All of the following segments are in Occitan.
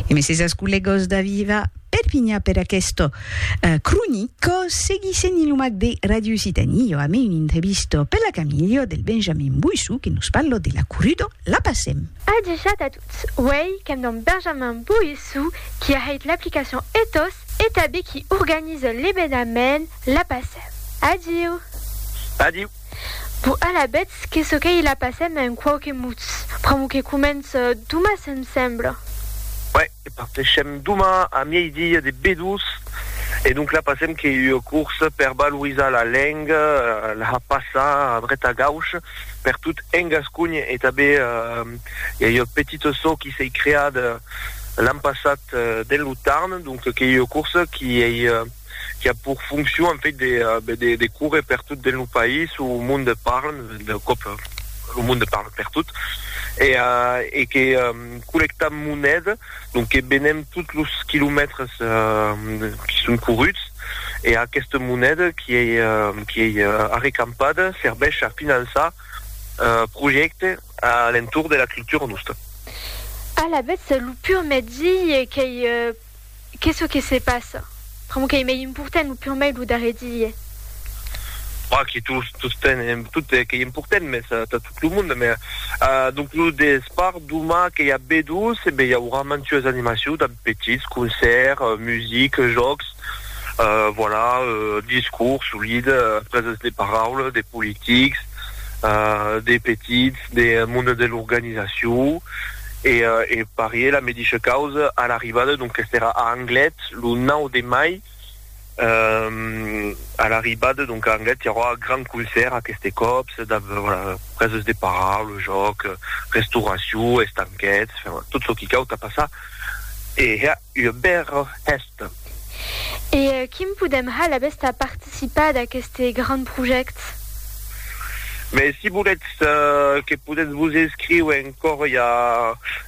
E mesesas collegos da Viva Perpigna per aquesto eh, cronico seguissent in lo mac de Radio Occitanie jo amé un intrevisto per la Camilio del Benjamin Boissou que nos parlo de la Currudo la passem. Adishat a tots, uèi qu'èm damb Benjamin Boissou qui a hèit l'aplicacion Ethos e tabé qui organise l'ebenament la passem. Adiu! Adiu! Bon, alavetz, qu'es çò qu'ei la passèm en quauque mots, pr'amor que comença doma, se'm sembla. Uèi, que parteshem doma a miei-dia de Bedús, e donc la passèm qu'ei ua corsa per valorizar la lenga, la passar a dret a gauch per tot en Gascony, e tanben i a ua petita çò qui s'ei creada l'an passat dens lo Tarn, donc qu'ei ua corsa qui ei. qui a pour fonction en fait de, euh, ben, de, de courir per tot dins lo país o o monde parle, de cop lo monde parle per tot, e, euh, e que euh, collectam moneda, donc que benem tots los quilomètres euh, qui son coruts, e aquesta moneda qui ei, euh, qui ei euh, arrecampada serveix a finançar euh, projèctes a l'entorn de la cultura nosta. Alavetz, lo pur mètzi qu'ei euh, Qu'es çò que se passa? Pr'amor qu'ei mei important lo purmei lo darrer die. Bah, que tot, tot ten, tot qu'ei important, mès tà tot lo monde, mès donc lo despart doma que i a B-2, e ben i aurà mantues animacions damb petits, concèrt, music, jòcs, voilà, discours, solide, presents de paraula, de politics, de petits. de monde de l'organizacion e e parié la medisha causa a l'arribada donc qu'est era a Anglet lo 9 de mai a l'arribada donc a Anglet i aurà grand concèrt aqueste còp preses de parar lo jòc restauracion estanquets tot çò qui cau tà passar e ua bèra hèsta. E quim podèm hal abèst a participar d'aqueste gran projèct? Mès si volètz que podètz vos escriu encòr i a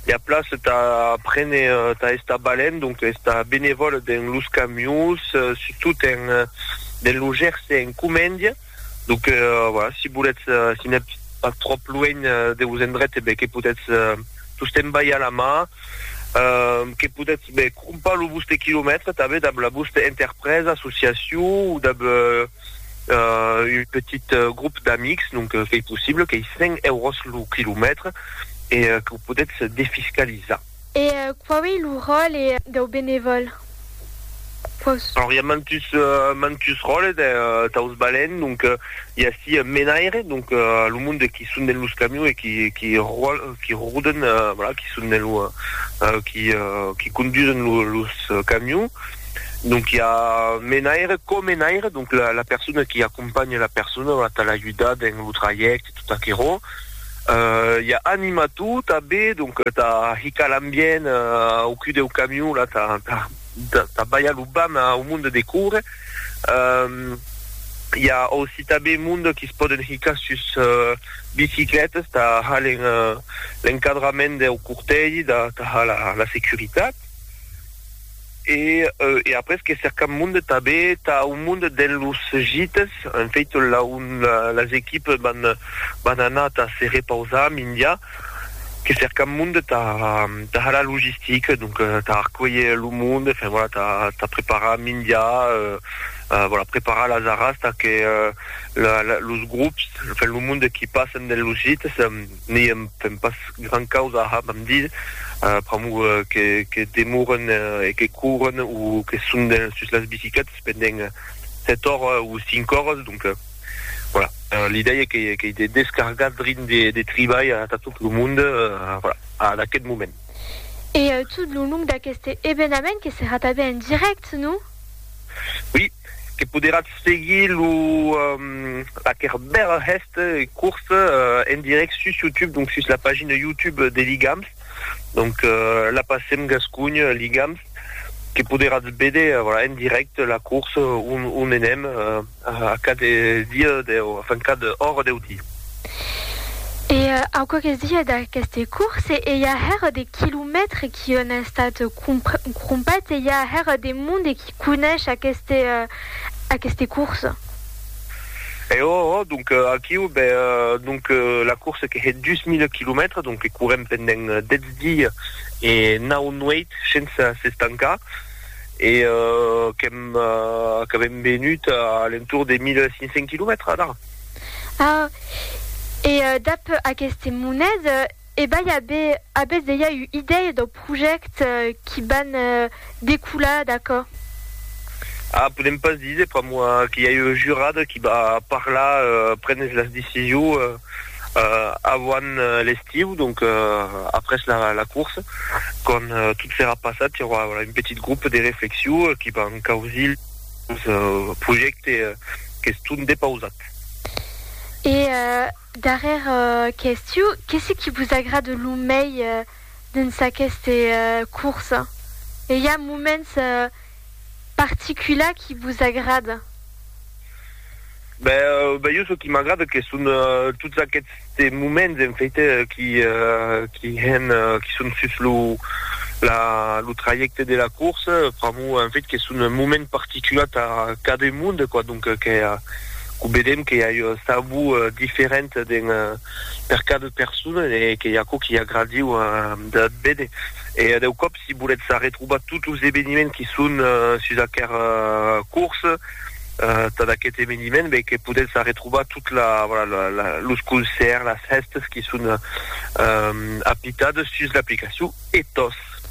ua plaça tà prene tà estar balènt, donc estar benevòl dens los camions, surtout dens lo Gerse en Comèndia. Donc voilà, si voletz, si n'ètz pas tròp luenh de vos endrech, ben que podètz tostemps balhar la mà, que podètz ben crompar lo vòste quilomètre tanben dab la vòste interpresa, associacion o dab un petit grop d'amics, donc qu'ei possible, qu'ei 5 euros lo quilomètre e que o podètz defiscalizar. E quau ei lo ròle dau benevòl? Quaus. Alors, i a mantus, mantus ròles daus balèns, donc, i a ací un menaire, donc, lo monde de qui son dens los camions e qui, qui ròl, qui roden, voilà, qui son dens lo, qui, qui condusen lo, los camions, donc, i a menaire, co-menaire, donc, la, la persona qui acompanha la persona, voilà, tà l'ajudar dens lo trajècte, tot aquerò. i a animat tot a be, donc tà hicar l'ambient au cul deu camion la tà tà balhar lo bam au monde de córrer i a aussi tà be monde qui se pòden hicar sus biciclètas tà har l'encadrament deu cortègi tà har la securitat. E e après que cercam monde tabé tà un monde dens los gites, en fait la un las equipes van van anar tà se repausar mindia que cercam monde tà tà har la logistique donc tà arcuelher lo monde enfin voilà tà tà preparar mindia euh voilà preparar las arras tà que la la los grops enfin lo monde qui passen dens los gites N'i èm pas gran causa a hab amb dir, pr'amor que demoren e que couren o que son sus las bicicletas pendent sèt oras o cinc oras, donc voilà, l'idèia qu'ei de descargar drin de tribalh atà tot lo monde, voilà, ad aquest moment. E tot lo long d'aqueste evenament que serà tanben en dirèct, non? Oui. que poderatz seguir lo laquèr bèl hèst curs en dirèct sus YouTube, donc sus la pagina YouTube de Ligams, donc la passem gascogn Ligams, que poderatz véder voilà en dirèct la curs on enèm a cad dia deu enfin cad ora deu dia. E au quauques dias d'aqueste curs e i a hèr de quilomètres qui an estat crompats e i a hèr de monde qui. conesh aqueste aqueste course. E o o donc aquiu be donc la course que hè 2000 kilomètres donc que courem pendent 10 dies e 9 nueit sense s'estancar e qu'èm qu'avem venut a l'entour de 1500 kilomètres adà. Ah e dab aqueste monet E bai a be, a bes deia u idèia dau project qui ban decular d'aquò? Ah, podem pas diser pr'amor que i a eu jurada qui ba parlar, prenes las decision avant l'estiu, donc après la course, quand tot serà passat, i aurà un petit groupe de reflexion qui ban causir lo projecte qu'es tot depausat. E Darrèra question, qu'es ce qui vos agrade lo mei dens aqueste corsa? E i a moments particulars qui vos agrada? Ben jo çò qui m'agrada que son tots aquests moments en fait qui qui hèn qui son sus lo la lo trajècte de la corsa pr'amor en fait que son moments particulars tà cadun monde quoi donc que Quò vedèm que i a uns tabous diferents dins per cada persona e qu'ei aquò qu'i agradiu de véder. E deu còp si volètz arretrobar tots los eveniments qui son sus aquer cors tad aquest eveniment ben que podètz arretrobar tot la voilà los concèrts, las hèstes qui son apitades sus l'aplicacion Ethos. App.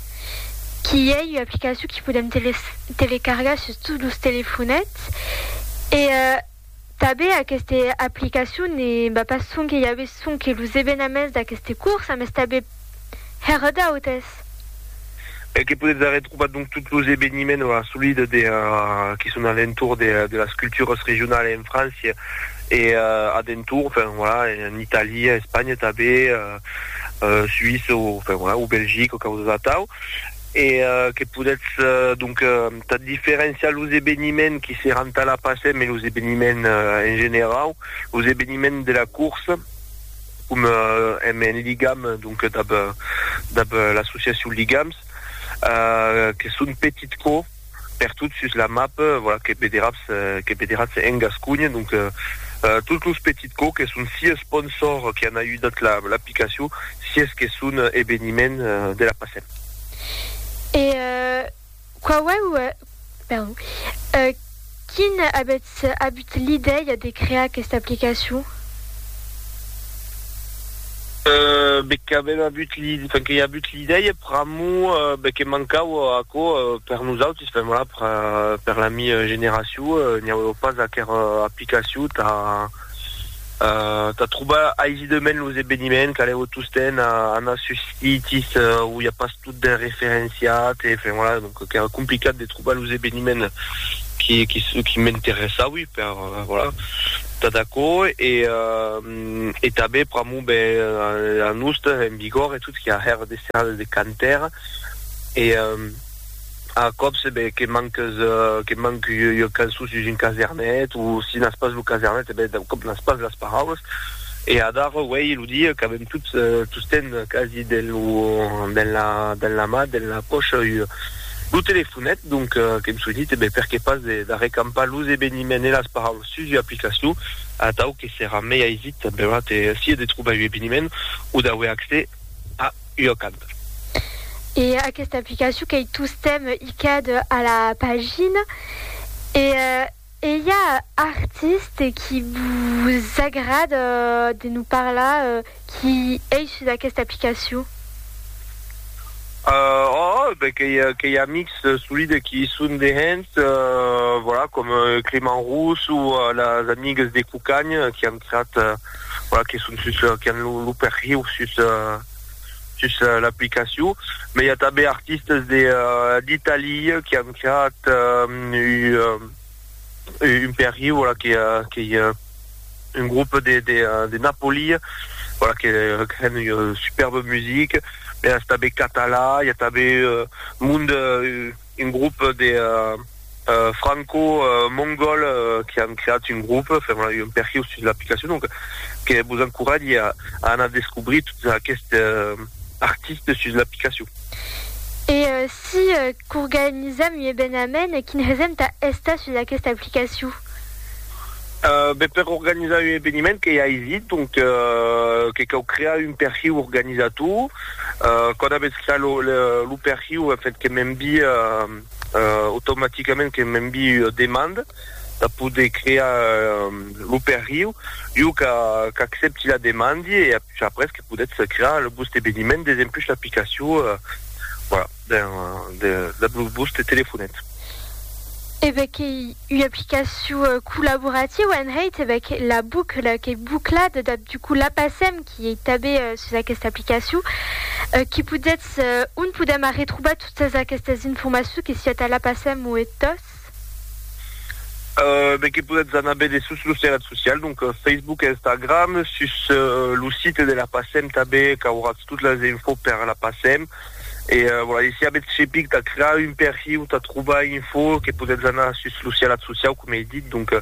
Qu'i ei ua aplicacion qu'i podem telecargar sus tots los telefonets e tanben aquesta aplicacion ne va pas sonque i aves sonque los evenaments d'aqueste corsa mes tanben hèr d'autes. E que podetz arretrobar donc tots los eveniments o assolida de qui son a l'entorn de de las cultures regionales en França e a d'entorn, enfin voilà, en Italia, Espanha tanben. Suisse o enfin voilà o Belgique o causas atau e que podètz donc tà diferenciar los eveniments qui seràn tà la PACEM e los eveniments en generau, los eveniments de la corsa com èm en ligam donc dab dab l'associacion Ligams que son petits cours. pertot sus la map, voilà, que vederatz, que vederatz en Gasconha, donc tots los petits cò que son si esponsors que an ajudat la, l'aplicacion, si es que son eveniment de la passèm. E quauèu, perdon, e. Quin avètz avut l'idèia de crear aquesta aplicacion? Be qu'avèm avut l'i, enfin que i avut l'idèia pr'amor be que mancava aquò per nosautis, enfin voilà per la mi generacion, n'i aueva pas aquera aplicacion tà, tà trobar aisidament los eveniments, calèu tostemps anar sus sites où i a pas tot ben referenciat, e enfin voilà, donc qu'èra complicat de trobar los eveniments qui qui m'interessaui per voilà, tà d'aquò e e tanben pr'amor ben a Aosta, en Bigòrre e tot, qu'i a hèr de serradas de cantaires e A còps, ben, que manques, que manc ua cançon sus un casernet, o si n'as pas lo casernet, e ben, d'un còp n'as pas las paraulas. E adara, uèi, lo dia qu'avèm tots, tostemp quasi, dens lo, dens la, dens la man, dens la pòcha, ua, lo telefonet, donc, qu'èm soinit, e ben, perqué pas de, d'arrecampar los eveniments e las paraulas sus ua aplicacion, atau que serà mei aisit, benlèu, de, sia de trobar un eveniment, o d'auer accès a. Iocad. E aquesta aplicacion qu'ei tostemp Icad a la pagina e ei a artiste qui vos agrada de nos parlar qui ei sus aquesta aplicacion? Oh, ben qu'ei amics solide qui i son de hènt, voilà, com Clément Rousse o las amigues de Cucagn qui an creat voilà, que son sus, qui an lo, lo perhiu sus, sus l'aplicacion. Mai i a tanben artistes de, d'Italia qui an creat u, un perhiu, voilà, que, que i a un groupe de, de, de Napoli, voilà, que, que an ua superbe musique. Mai es tanben catalan, i a tanben monde, un grop de franco mongol que an creat un grop fèron a un perhiu sus l'aplicacion donc que vos encoratge a anar descobrir tot aqueste artiste sus l'aplicacion. E si qu'organizam un evenament quin hesem tà estar sus aqueste aplicaciu? Ben, per organizar un eveniment qu'ei aisit, donc que cau crear un perhiu organizator. Quand avètz creat lo lo perhiu, en fait, que m'envie automaticament que m'envie ua demanda tà poder crear lo perhiu. Jo qu'a qu'accepti la demandi e apuish après que podètz crear lo vòste eveniment des empuish l'aplicacion, voilà. Ben, de la Bluesbus te telefonet. E ben qu'ei ua aplicacion collaborativa en hèit, e ben que la bucla qu'ei buclada, dab du coup la passem, qui ei tabé sus aquesta aplicacion, qui podetz, on podem arretrobar totas aquestas informacions que siá tà la passem o e tòs? E ben que podetz anar bède sus los terrat socials, donc Facebook, Instagram, sus lo site de la passem tabé qu'auratz tot las infos per la passem, E voilà, e si avètz cepic tà crear un perfil o tà trobar info que podètz anar sus lo sialat sociau, coma ei dit, donc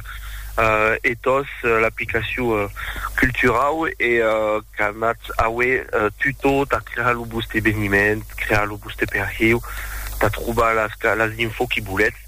Ethos, l'aplicacion culturau e qu'anatz aué tutò tà crear lo vòste eveniment, crear lo vòste perfil, tà trobar las info qui volètz.